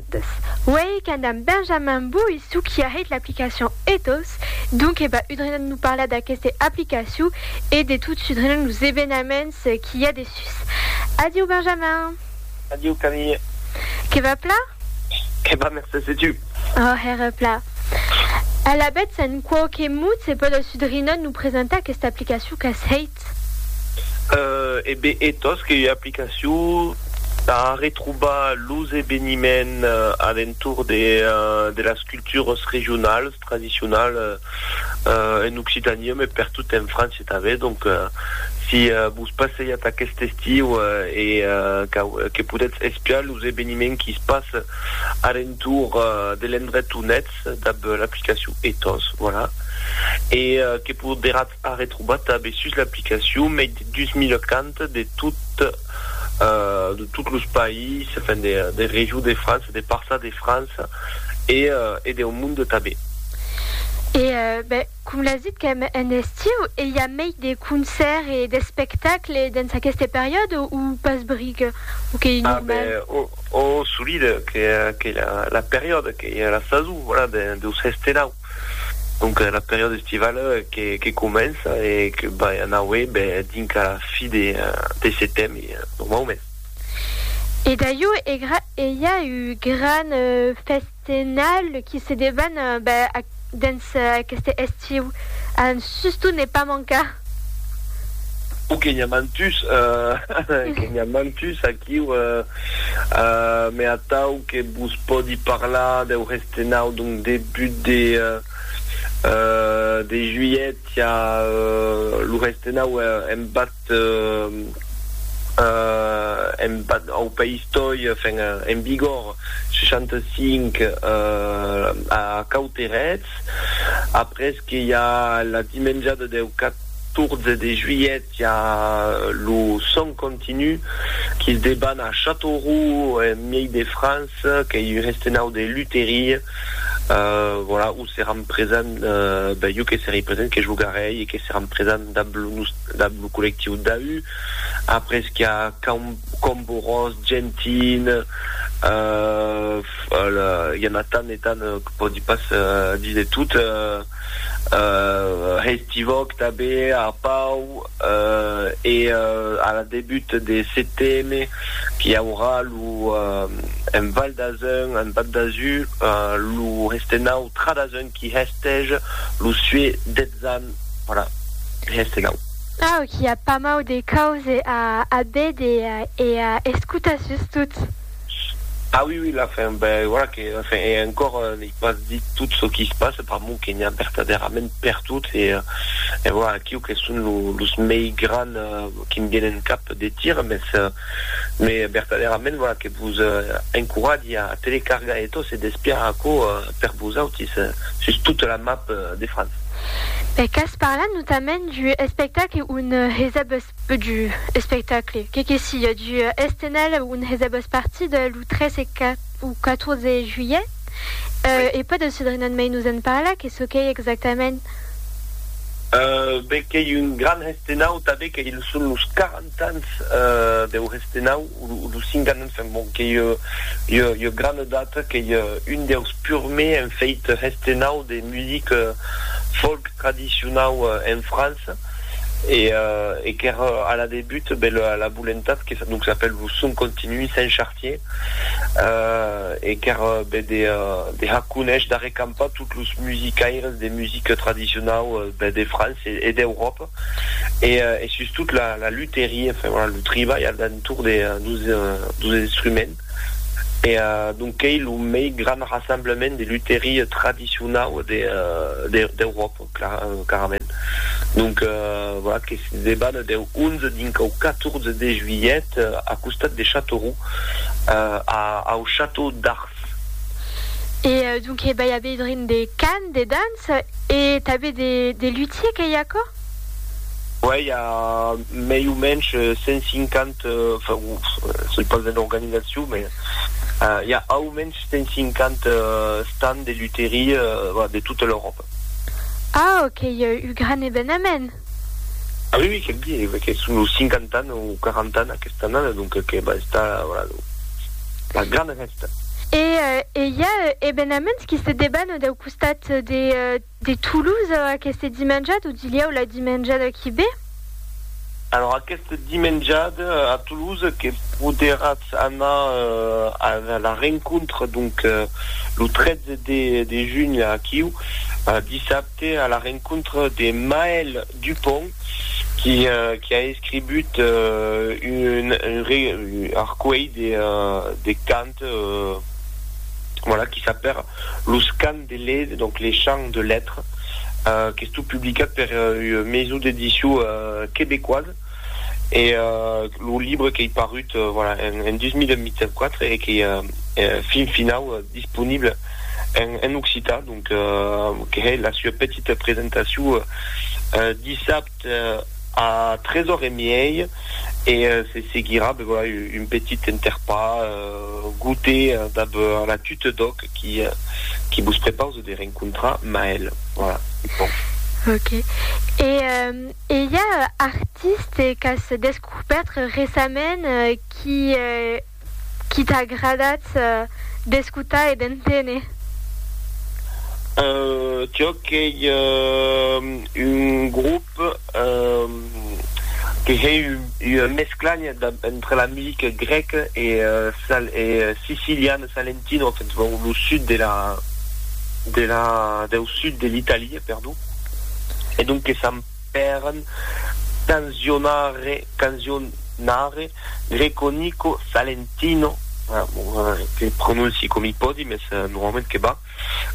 Ethos. Uèi qu'an damb Benjamin Bouy suquiarrit l'aplicacion Ethos, donc e ba udrinan lo parlar d'aqueste aplicacion e de tot s'udrinan los evenaments qu'i a dessús. Adiu Benjamin! Adiu Camille! Que va pla? Que va mercés e tu? Ò, hèra pla. Alavetz en quauque mot se pòde s'udrinan lo presentar aquesta aplicacion qu'as hèit? E be e tos qu'ei ua aplicacion tà arretrobar los eveniments a l'entorn de las cultures regionales, tradicionales en Occitania, mès pertot en França tanben. Donc, si vos passejatz aquest estiu e que podètz espiar los eveniments qui se passen a l'entorn de l'endret on ètz dab l'aplicacion e tos, voilà. E que poderatz A retrobar tanben sus l'aplicacion mei de 2040 de tot los païses, enfin de Région de France, de Parças de França e deu monde tanben. E ben, com l'as dit qu'èm en estiu, e i a mei de concèrts e d'espectacles dens aqueste periòde o pas bric? O qu'ei normal? A ben, o, solide, qu'ei la periòde, qu'ei la sason, voilà, deus hèster là. Donc la periòda estivala que comença e que vai anaue dinca la fi de setembre normaument. E daieu egra e i a un gran festenal qui se deban dens aqueste estiu a Suston ne pas mancar. O que n'i a mantus, que n'i a mantus aquiu, me atau que vos pòdi parlar deu. De nau, donc debut de de juilhet i a lo res de nau embat embat au País Toi, enfin en vigor 65 a Cauterets, après que i a la dimenjada deu 14 de juilhet, Qu'i a lo sòn continu qu'i's deban a Châteauroux, en miei de France, qu'ei un restenau de luteria, voilà, où seràn presents, ben jo que serei present, que jogarei e que seràn presents damb lo nus, damb lo collectiu DAU, après qu'i a Cam, Camborós, Gentin, i a na tant e tant que pòdi pas díser tot. hestivòc tanben a Pau e a la debut de seteme qu'i aurà lo en Val d'Azun, en Val d'Azur, lo hestenau Tra d'Azun qui hestège lo sué detzan voilà hestenau. Au qu'i a pas mau de cause a a béder e a escotar sustot. Ah oui oui la fin ben voilà que la fin et encore n'ai pas dit tout ce qui se passe per mon que n'hi a vertadèrament per tot et et voilà aquiu que son lo los mei gran qui'm vienen cap de tir mes me vertadèrament voilà que vos encoratge a telecargar e tot se despiar aquo per vosautis sus tota la map de France. E qu'as parlat notament du espectacle un hesèb Peu du espectacle, que que siá, du Estenal on hè's abast partit lo 3 e o 14 e juilhet, e pòt el Cedrinon mei nos en parlar, que çò qu'ei exactament? Be qu'ei un gran hestenau, tanben que ils son los 40 ans deu hestenau. Lo Singanen fen bon qu'ei ua grana data qu'ei un deus purmei en feit hestenau de music folk tradicionau en França e qu'ère a la debut be la volentat que donc s'apèl lo Son Continu Saint-Chartier e qu'ère be de har conéisher, d'arrecampar tot los musicaires de music tradicionau de França e d'Euròpa. e e sustot la la luteria enfin voilà lo tribalh al d'entour de dos dos instruments e donc qu'ei lo mei grand rassemblement de luteria tradicionau de de d'Euròpa clar carament donc voilà que se deban deu 11 dinc au 14 de juilhet a costat de Châteauroux a au château d'Ars. E donc he bèia bedrint de cant, de danç? Ets e tanben de lutier qu'ei aquò? Uèi, i a mei o mensh 150, soi pas en organizacion, me i a au mensh 150 stands de luterie de tota l'Euròpa. Au, qu'ei un gran evenament! Ah oui oui que'm dire ve que son los 50 ans o 40 ans aquesta annada donc que va estar voilà lo la grana fèsta. E e i a ebenaments qui se deban dau costat de de Toulouse aqueste dimenjada o dilhèu la dimenjada qui ve? Alors aqueste dimenjada a Toulouse que poderàtz anar a la rencontre donc lo 13 de de junh aquiu dissabte. C'était à la rencontre de Maël Dupont qui qui a escribut un arcueil de de cant voilà qui s'apèra Los cants de Led donc les chants de lettre qu'estó publicat per ua maison d'édition québécoise. e lo libre qu'ei parut en 2024 e qu'ei fin finau disponible en occitan, donc que hè la sua petita presentacion dissabte a 3 ore e miei e se seguirà un petit enterpar goûter dab la Tute d'Òc qui vos prepause de rencontrar Maëlle. Voilà, bon. Ok. E E i a artistes qu'as descubèrt recentament qui t'a agradat d'escotar e d'enténer? Jo qu'ei un grop que hèi ua mescla entre la music grèc e sicilian, salentino, lo sud de la, deu sud de l'Italia, perdon. e donques s'an pèren canzionare, canzionare Greco Nico Salentino, que prononci com i pòdi, mes normalment que va,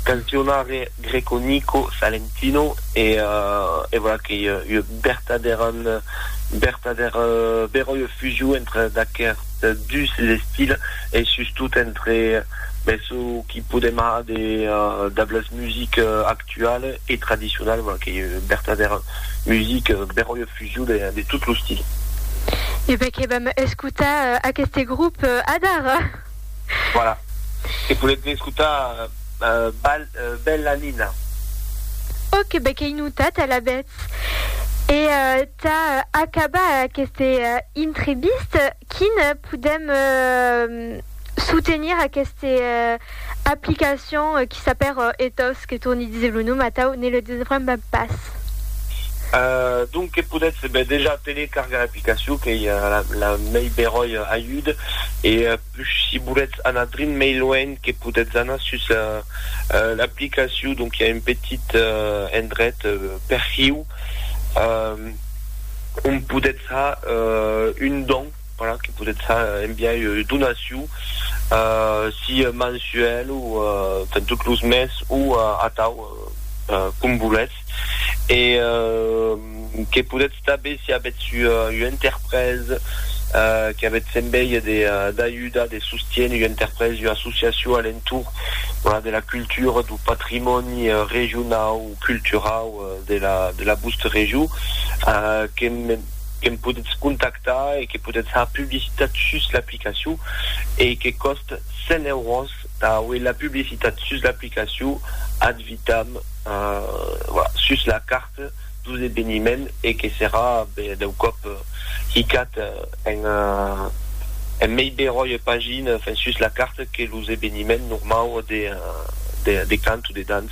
canzionare Greco Nico Salentino e e voilà que i ua bertadèran, bertadèra, beròia fusion entre d'aquerts dus estils e sustot entre, mes, çò qu'i podem har de, dab las musiques actualas, actual e tradicional, voilà qu'ei ua vertadèra musica beròia fusion de de tot lo stil. E ben que vam escotar aqueste grop adara. Voilà, e podètz ne escotar bal Bella Nina. Ok, ben qu'ei notat alavetz. E tà acabar aqueste intrevista, quin podèm Soutenir aqueste aplicacion qui s'apèr Ethos, que torni díser lo nom atau ne le desbremba pas. Donc que podètz ben dejà telecargar l'aplicacion qu'ei la mei beròi ajud e pus si volètz anar drin mei luenh que podètz anar sus l'aplicacion donc i a un petit endret perfiu ont podètz har un don. Voilà, que podètz enviar ua donacion, si mensuèl o per tot los mes o atau, com volètz. E que podètz tanben, si avètz ua interpresa, que avètz envèi d'ajudar, de sostiéner ua interpresa, ua associacion a l'entorn de la cultura, du patrimòni regionau, culturau de la de la vòstra region que que'm podetz contactar e que podetz far publicitat sus l'aplicacion e que còst 100 euros tà auer la publicitat sus l'aplicacion ad vitam voilà sus la carta dos eveniment e que serà deu còp hicat en en mei beròia pagina enfin sus la carta que los eveniment normau de de de cant o de dança.